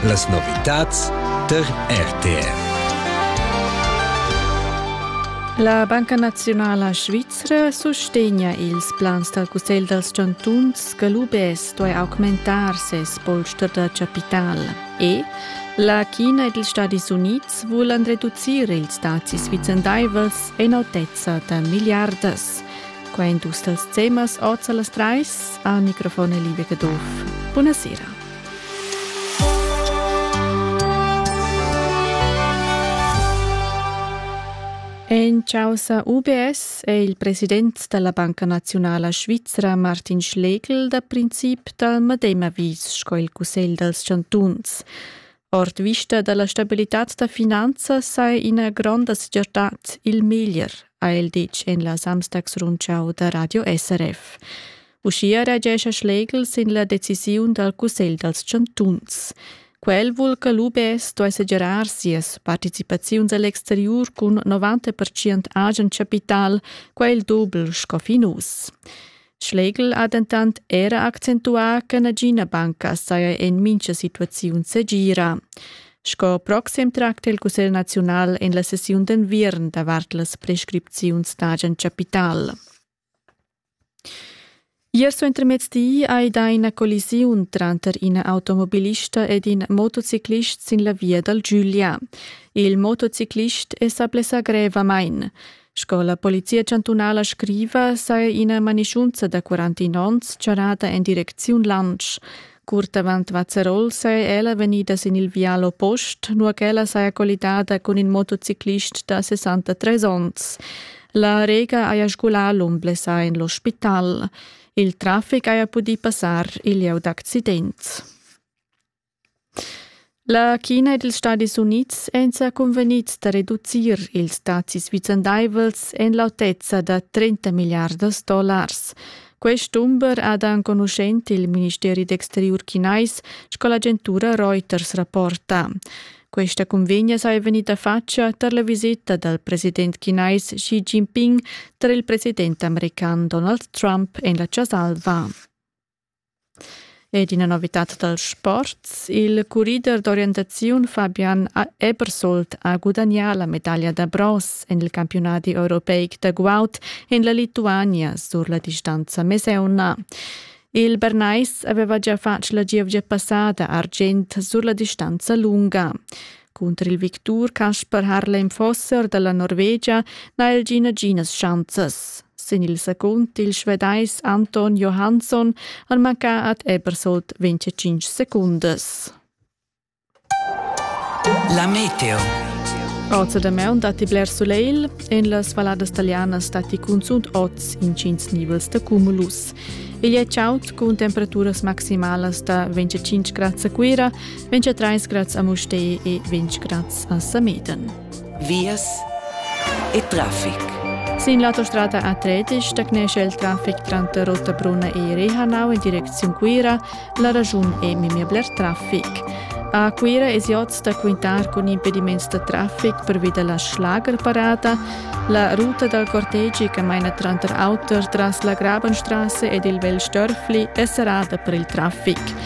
Las novitads tar RTR. La Banca Naziunala Svizra sustegna ils plans dal Cussegl dals chantuns che l'UBS duai augmentar ses polster da chapital. E la China ed ils Stadis Unids vulan reducir ils dazis vicendaivels en autezza da milliardas. Quai èn dus dals temas oz a las trais. Al microfon è Livia Caduff. Buonasera. En causa UBS è il president della Banca Nazionala Svizra Martin Schlegel da princip dal medem avis sco il Cussegl dals chantuns. Ord vista dalla stabilitad da finanzas sei ina gronda segirtad il meglier, ha el detg en la Samstagsrundschau da Radio SRF. Uschia reagescha Schlegel sin la decisiun dal Cussegl dals chantuns. Quel vul che l'UBS duai segirar sias participaziuns all'exteriur cun 90% agen chapital, quel doble sco fin uss. Schlegel ha dentant era accentuà che nagina banca saja en mincha situaziun segira. Sco proxim tracta il Cussegl naziunal en la sessiun d'enviern davart las prescripziuns d'agent capital. Ier suentermezdi hai dà ina collisiun tranter ina automobilista ed in motociclist sin la via dal Giulia. Il motociclist è sa blessà grevamain. Sco la Polizia chantunala scriva, saja ina manischunza da 41 onns charrada en direcziun Lansch. Curt avant Vazzerol saja ella vegnida sin il vial oppost, nua ch'ella saja collidada cun in motociclist da 63 onns. La Rega haja sgulà l'um blessà en l'ospital. Il traffic haja pudì passar il lieu d'accident. La China ed ils Stadis Unids èn sa cunvegnids da reducir ils dazis vicendaivels en l'autezza da 30 milliardas dollars. Quest dumber ha da enconuschent il ministeri d'exteriur chinais sco l'agentura Reuters rapporta. Questa cunvegna saja vegnida fatga tar la visita dal president chinais Xi Jinping tar il president american Donald Trump en la Chasa Alva. Ed ina novitad dal sport. Il currider d'orientaziun Fabian Ebersold ha gudagnà la medaglia da bronz en il campiunadi europeic da guaud en la Lituania sur la distanza mesauna. Il Bernais aveva gia fatg la gievgia passada argient sur la distanza lunga. Cunter il victur Casper Harlem Fosser dalla Norvegia n'ha el gia naginas schanzas. Sin il secund il Svedais Anton Johansson han mancà ad Ebersold 25 secundas. La meteo. Oz da maun datti bler soleil, en las valladas talianas datti cunzunt oz intgins nivels da cumulus. Igl è chaud cun temperaturas maximalas da 25 grad a Cuira, Vince trais grads a Mustei e vince grads a Sameten. Vias e traffic. Sin l'autostrada A3 stagnesce il traffic tranter Rottabrunna e Rehanau in direcziun Cuira. La ragiun è memia bler traffic. A Cuira è oz da quintar con impediments da traffic per via della Schlagerparata. La ruta dal cortegi che maina tranter auter tras la Grabenstrasse ed il Vel Störfli è serrata per il traffic.